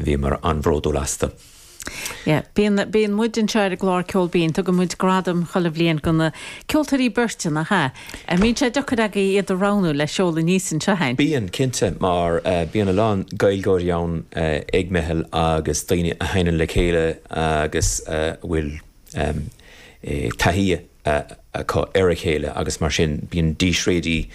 Bhíomar an-bhródúil astu. Yeah. Bíonn, bíonn muid anseo ar an gclár Ceol Binn, tugann muid gradaim chuile bhliain do na ceoltóirí beirteanna, ha. Eh, mbíonn sé deacair agaí iad a roghnú le seoladh aníos anseo chugainn. Bíonn, cinnte, mar eh, bíonn a lán Gaeilgeoirí ann eh, ag Meitheal agus daoine a sheinneann le chéile agus eh, a bhfuil eh, taithí acu ar a chéile agus mar sin bíonn dísréadaí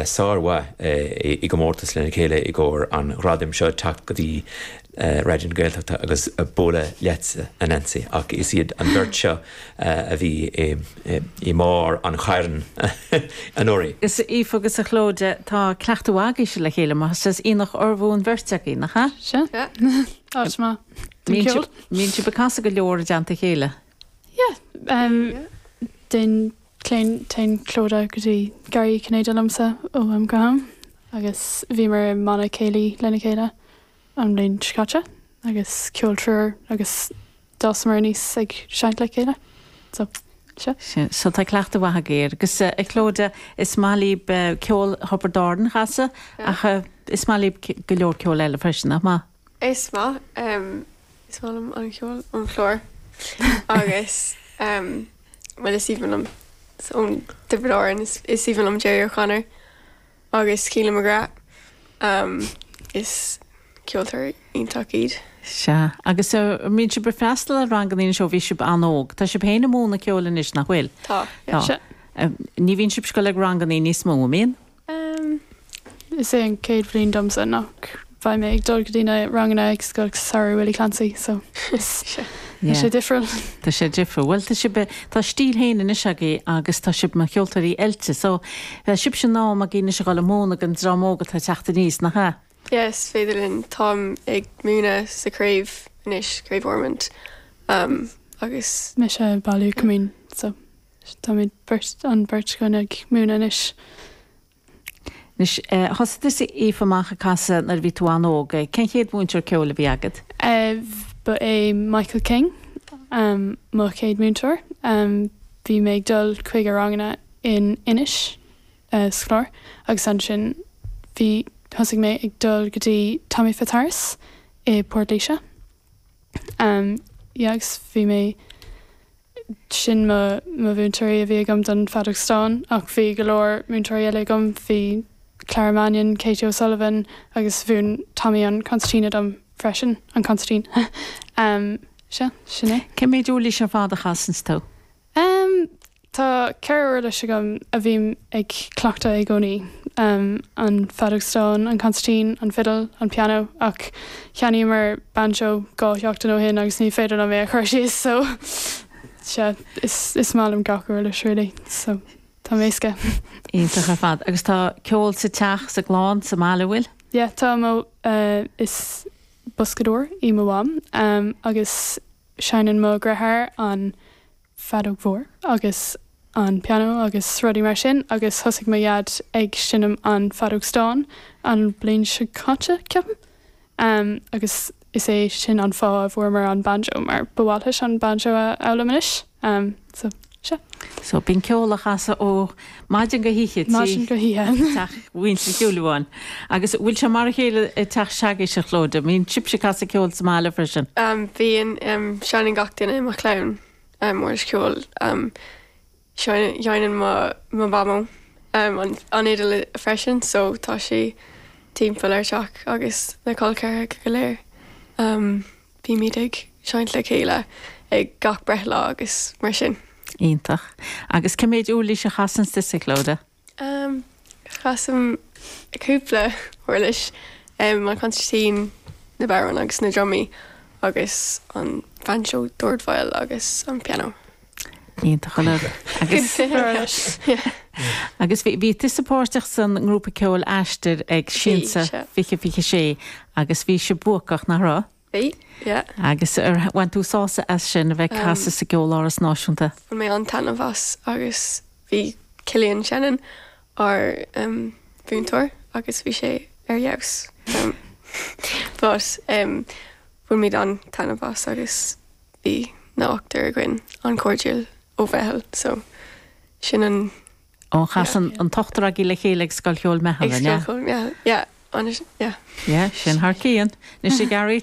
sármhaith i gcomórtas lena chéile i gcomhair an ghradaim seo teacht go dtí Raidió na Gaeltachta agus bualadh leatsa, a Neansaí, ach is iad an bheirt seo a bhí i mbarr an chairn anuraidh. A Aoife agus a Chlodagh, tá cleachtadh agaibhse le chéile, mar is as Aonach Urmhumhan an bheirt agaibh, nach ea? Sea. Áit maith don cheol. Mbíonn sibh ag casadh go leor i dteannta a chéile? Téann Clodagh go dtí Garraí Cinnéide liomsa ó am go ham agus bhíomar i mbanna céilí lena chéile an bhliain seo caite agus ceol triúir agus d'fhásamar aníos ag seinnt le chéile. Sea, tá cleachtadh mhaith agaibh air. Agus, a Chlodagh, is maith libh ceol Thiobraid Árann a chasadh ach is maith libh go leor ceol eile freisin, nach maith? Is maith is maith liom an ceol ón Chlár agus bhuel is aoibhinn liom ó Thiobraid Árann is aoibhinn liom Gerry O'Connor agus Keelan McGrath. Is ceoltóirí iontach iad. Sea. Agus an mbíonn sibh ag freastal ar ranganna anois ó bhí sibh an-óg? Tá sibh féin ag múineadh ceoil anois, nach bhfuil? Tá. Ní bhíonn sibh ag goil ag ranganna níos mó, an mbíonn? Umm, is é an chéad bhliain domsa nach mbeidh mé ag dul go dtí na ranganna ag Scoil Samhraidh Willie Clancy, so is tá sé difriúil. Tá sé difriúil. Bhuel, tá sibh, tá stíl féin anois agaí agus tá sibh mar cheoltóirí oilte, so bheadh sé in am agaí anois a dhul ag múineadh an dream óg atá ag teacht aníos, nach ea? Yeah, is féidir linn. Táim ag múineadh sa Chraobh anois, Craobh Ormond, umm, agus. Mise Baile Uí Chomáin, so. Táimid beirt, an bheirt againn ag múineadh anois. Anois, thosaigh tusa, a Aoife, amach ag casadh nuair a bhí tú an-óg. Cén chéad mhúinteoir ceoil a bhí agat? Ba é Michael King mo chéad mhúinteoir. Bhí mé ag dul chuig a ranganna in Inis, sa Chlár, agus ansin bhí, thosaigh mé ag dul go dtí Tommy Fitzharris i bPort Laoise. Yeah, agus bhí mé. sin mo mhúinteoirí a bhí agam don fheadóg stáin ach bhí go leor múinteoirí eile agam, bhí Clara Mannion, Katie O'Sullivan agus mhúin Tommy an concertina dom freisin, an consairtín. Sea, sin é. Cé mhéad uirlis ar fad a chasanns tú? Tá ceithre uirlis agam a bhím ag cleachtadh i gcónaí, an fheadóg stáin, an consairtín, an fidil, an pianó ach Cheannaíomar bainseo dhá sheachtain ó shin agus ní féidir liom é a chur síos so sea, is maith liom gach uirlis really so tá mé ag meascadh. Iontach ar fad. Agus tá ceol sa teach, sa gclann sa mbaile, an bhfuil? Yeah, tá mo, is boscadóir í mo mham agus seinneann mo dheartháir an feadóg mhór agus an piano agus rudaí mar sin agus thosaigh mo Dhaid ag seinm an feadóg stáin an bhliain seo caite, ceapaim, agus is é sin an fáth a bhfuaireamar an banjo mar ba mhaith leis an banjo a fhoghlaim anois. So, sea. So, bíonn ceol á chasadh ó maidin go hoíche. Maidin go hoíche i dteach mhuintir Uí Shúilleabháin. Agus an bhfuil sé mar a chéile i dteach s'agaibhse, a Chlodagh? Bíonn sibhse ag casadh ceoil sa mbaile freisin? Bíonn. Seineann gach duine i mo chlann uirlis cheoil. Seineann mo mhamó an fhidil freisin so tá sí timpeall an teach agus na col ceathracha go léir. Bímid ag seinnt le chéile ag gach breithlá agus mar sin. Iontach. Agus cé mhéad uirlis a chasann tusa, a Chlodagh? Ehm, casaim cúpla uirlis. Ehm, an consairtín, an bodhrán agus na drumaí agus an bainseo, dordveidhil agus an pianó. Iontach. Agus agus bhí bhí tusa páirteach sa ngrúpa ceoil Aistear ag Siansa Bhí, sea. 20 26 agus bhí sibh buacach nach raibh? Bhí, yeah. Agus ar bhain tú sásamh as sin a bheith ag casadh sa gceoláras náisiúnta? Bhain mé an-taitneamh as agus bhí Cillian Shannon ár em mhúinteoir agus bhí sé ar fheabhas em but em bhaineamar an-taitneamh as agus bhí an ochtar againn an-chairdiúil ó Mheitheal so sin an. Ó, chas an an t-ochtar agaibh le chéile ag Scoil Cheoil Meitheal, an ea? Ag Scoil Cheoil Meitheal, yeah, an ea, yeah. Yeah, sin thar cionn. Anois a Gary.